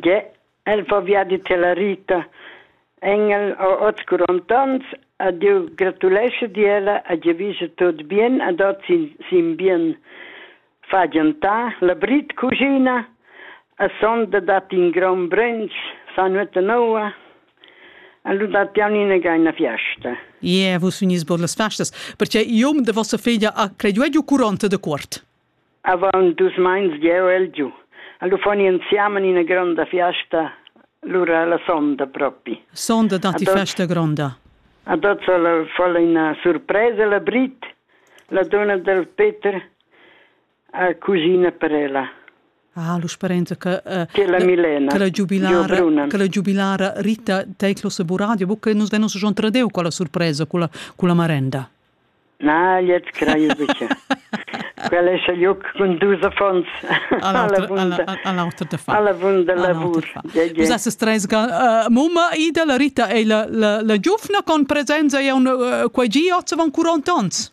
Gie, el fa viadi tiella Rita. Engel ha oz quaranta onns ed jeu gratulescha di ella e giavischa tut bien ed oz sin, sin bien. Fa giantar, labrit cuschina e sonda dat in gron brunch, sa nuota noua e lu dat jau inagà ina fiasta. Ie, vus vegnis bod las festas, perche iom da vossa feglia ha credu giu quaranta da quart. Avaunt dus meins jeu el giu. Allura fon i insiamen ina gronda fiasta, lura la sonda propi. Sonda da ti festa gronda. Ad hoz fol ina surpresa la Brit, la donna del Peter, a cusina per ella. Ah, lu sperenza che uh, che la Milena che la giubilara che la giubilara Rita Teiclos Buradio buca nus venus schon tradeu con la sorpresa con la con la marenda Na, gliez crei buca. Quel ei seliuc cun dus affons. All'avunda lavur. Vus esses treis ga mumma Ida, la Rita ei la, la, la giuvna con presenza e un quei gi oz van 40 onns.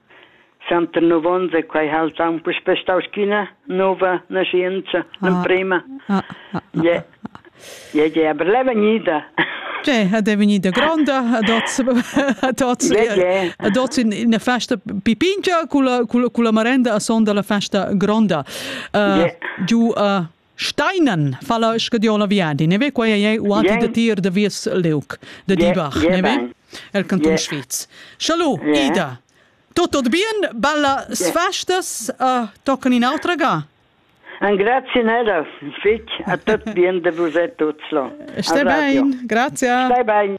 Centenov onns e quei ha el aunc puspei stau sch'ina nova naschientscha, l'emprema. Gie, gie, gie, aber l'è vegnida. Gie, ed è vegnida gronda ad oz, ad oz, ad oz ina festa pipingia con la, con la, con la marenda a son dalla festa gronda. Uh, giu uh, Steinen fala schediol la viadi, ne ve quai ei uati yeah. de tir de vies leuc de yeah. Dibach, yeah, ne ve? El canton yeah. Schweiz. Schalu, yeah. Ida. Tot tot bien, balla sfastas uh, tocan in autra ga. Un grazie nera, fic, a tot bien de vos e tots lo. Stai bein, grazie. Stai bein.